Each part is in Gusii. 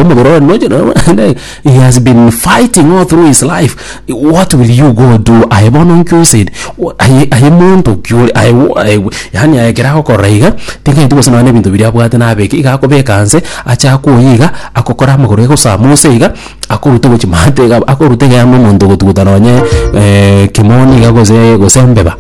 omogoro one noche no- naende he has been fighting all through his life what will you go do aye bono nkio said "Wo- aye aye monto kiore aye wo- aye we-" yaani aye ekero agokorora iga tingeti gose nonye na ebinto biria abwate nabeke iga akobeka nse ache akoyia iga agokora amagoro egosama ose iga akoruta gochia maate iga akoruta iga yaani omonto ogotuguta nonye kemoni iga gose gose embeba.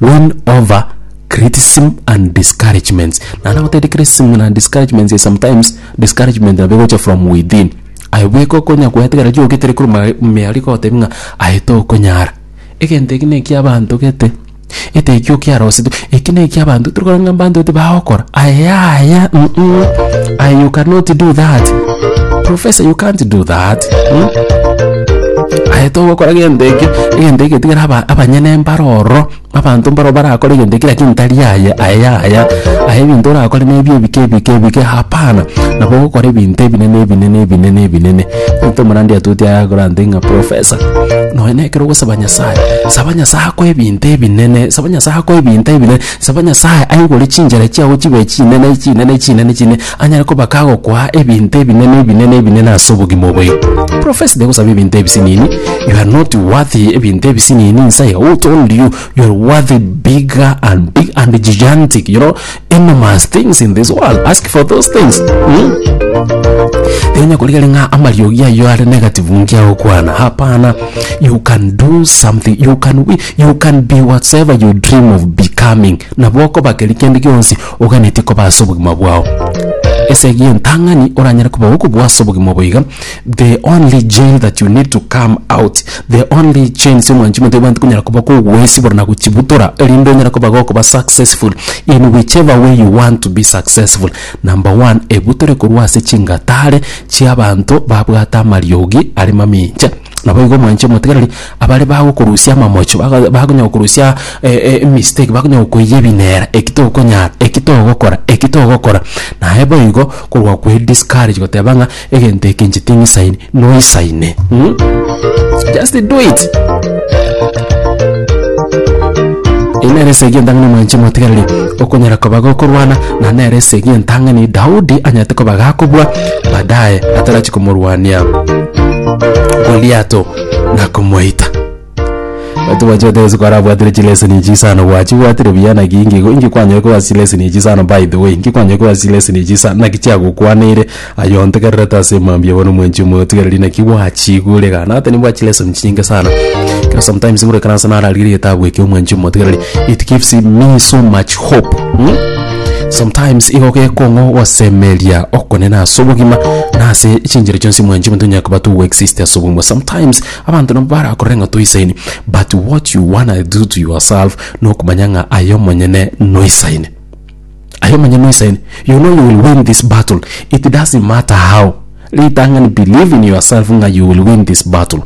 win over criticism and discouragements nana gotete criticism na discouragements is sometimes discouragement na begocha from within aye bweka okonya kwetegera jogitire kuru miari gotebi ng'a aye tokonyara egento eki nekia abanto gete ete ekio kiarosete eki nekia abanto turi korora ng'a abanto ete bagokora aye yaya mm mm aye you cannot do that. Professor you can't do that. Hmm? Aye togokora gento eke, egento eke tigera aba- abanyene mbare ororo, abanto mbaro barakore egento eke lakini tari aye, aye yaya. Aye ebinto orakore nebio ebike ebike ebike hapana. Nabo ogokora ebinto ebinene ebinene ebinene ebinene. Egento omorandia atoetie aye akorante ng'a professor, nonya nekero ogosaba Nyasaye, saba Nyasaye akoe ebinto ebinene, saba Nyasaye akoe ebinto ebinene, saba Nyasaye aigure chinchera chiago chibe chinene chinene chinene chine. Anyare koba kagokwa ebinto ebinene ebinene ebinene ase obogima obo ii. Profess de gosaba ebinto ebisinini, you are not worthy ebinto ebisinini insae who told you you are worthy bigger and big and gigantic you know enormous things in this world ask for those things mm? Tinya kurigari ng'a amariogi ayo are negative nkia okwana hapana you can do something you can wi- you can be whatsoever you dream of becoming nabo okoba keri kende gionsi Oganetie koba ase obogima bwao. Ase egiya entang'ani oranyare koba okobua ase obogima obo iga, the only jail that you need to come out, the only chains omwanchima ntoibo egento konyara koba kogoesibora na gochibutora erinde onyare koba gokoba successful in whichever way you want to be successful. Number one, ebutore korwa ase chingatare chiabanto babwate amariogi are mamincha. Naboigo omwanche omotigareri, abare bagokorusia amamocho, baga bakonya gokorusia emistake, bakonya gokoiyia ebinera, eki tokonyara, eki togokora, eki togokora, naye boigo korwa kwe discourage goteba ng'a egento eke inche ting'isaini, noisaine mh, just do it. Eye nere esegi entang'ani omwanchi omotigareri, okonyara koba gokorwana, na nere esegi entang'ani Daudi anyarete koba gakobua. baadaye atarachi komorwania goliato na komoita batu bachoteresi kwarabwatire chileseni echi sana gwachibwatire buya naki inki inki kwanyore koba sileseni echi sana by the way inki kwanyore koba sileseni echi sana naki chiagokwaneire aye ontegererete ase emambia bono mwenche omoyo otigereri naki gwachigure iga nata nibwa chileseni chinyinge sana Kero sometimes buna ekero ase nararire egetabu ekio omwanchi omotigereri it gives me so much hope mm? Sometimes igo gekong'o gosemeria okonene ase obogima na ase chinchera chionsi mwanchi omonto onye koba to exist ase obogima. Sometimes abanto nabo barakorere ng'a toisaini but what you wanna do to yourself nokomanya ng'a aye omonyene noisaini. Aye omonyene noisaini. You know you will win this battle it doesn't matter how. Ritang'ani believe in yourself ng'a you will win this battle.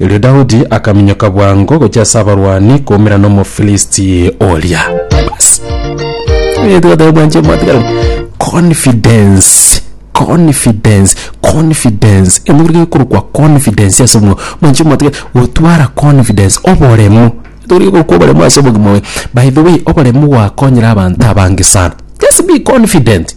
Erio Daudi akaminyoka bwango gochia ase abarwani koumera n'Omofilisti oria. Bas. Erio Daudi anche mwatigana. Confidence. Confidence. Confidence. Emogere gekorokwa confidence ase omonwa. Mwanche mwatigana. Gotwara confidence. Oboremo. Tore gekorokwa oboremo ase obogima oye. By the way, oboremo gwakonyire abanto abange sana. Just be confident.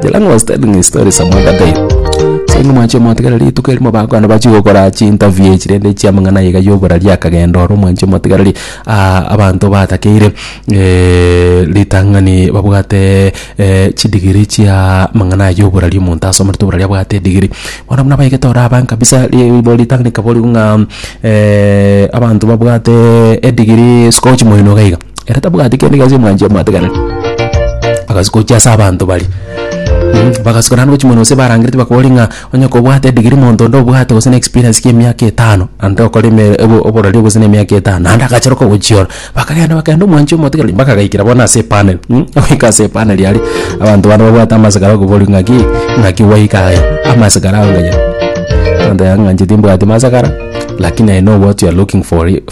The line was telling his story some other day. So ng'a mwanche motigara rituko erimo bakwana bachi gokora chi interview echi rende chia mang'ana iga yoborari akagenda oro mwanche motigarari ah, abanto batakeire eh, ritang'ani babwate eh, chidigiri chia mang'ana aya yoborari omonto asomerete oborari abwate edigiri bono buna baigete ore abange kabisa ribo ritang'ani kabori ng'a eh, abanto babwate edigiri siko chimoino iga iga Ere tabwati kende gionsi omwanchi omoateganete. Agasuka gochia ase abanto baria. Mm, Bagasuka naende gochia mono gose barangerete bakori ng'a onye kobwate edigiri monto onde obwate gose na experience kia emiaka etano, naende okore eme obo- oborori gose na emiaka etano, naende agacheroka gochia oro. Bakagenda bakaenda omwanchi omotiga mpaka agaikera bono ase epanel, mm, goika ase epanel aria, abanto bana babwate amasikara okobori ng'aki, ng'aki gwaika aye, amasikara aonge aye. Abanto yang'anchete mbwati masakara, lakini I know what you are looking for,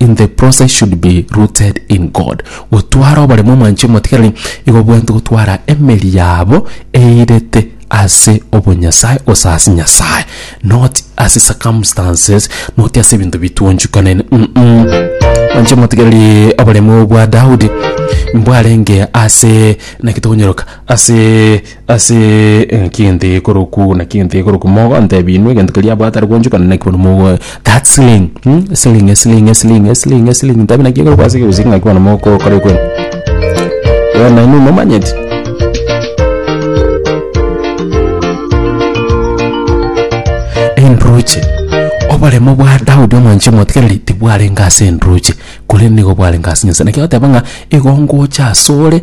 in the process should be rooted in God. Gotwara oboremo omwanche omotigereri igo bwento gotwara emeri yabo eirete ase obonyasae gose ase Nyasae not ase circumstances not ase ebinto bitwonchukanene mm -mm. Mwanche omotigereri oboremo bwa Daudi mbwarenge ase naki tokonyoroka ase Ase engaki egento ekorokwa ogo naki egento ekorokwa mogo antebi inwe egento keria abwate are gwanchokana naki bono mogoe that sling mm esling esling esling esling esling ntebi naki ekorokwa ase egusii ng'aki bono mogokora ekwe eh nainwe momanyeti enduruche oboremo bwa Daudi omwanchi omotigereri tibwarenge ase enduruche korende nigo bwarenge ase Nyasae naki agoteba ng'a igo ngocha asore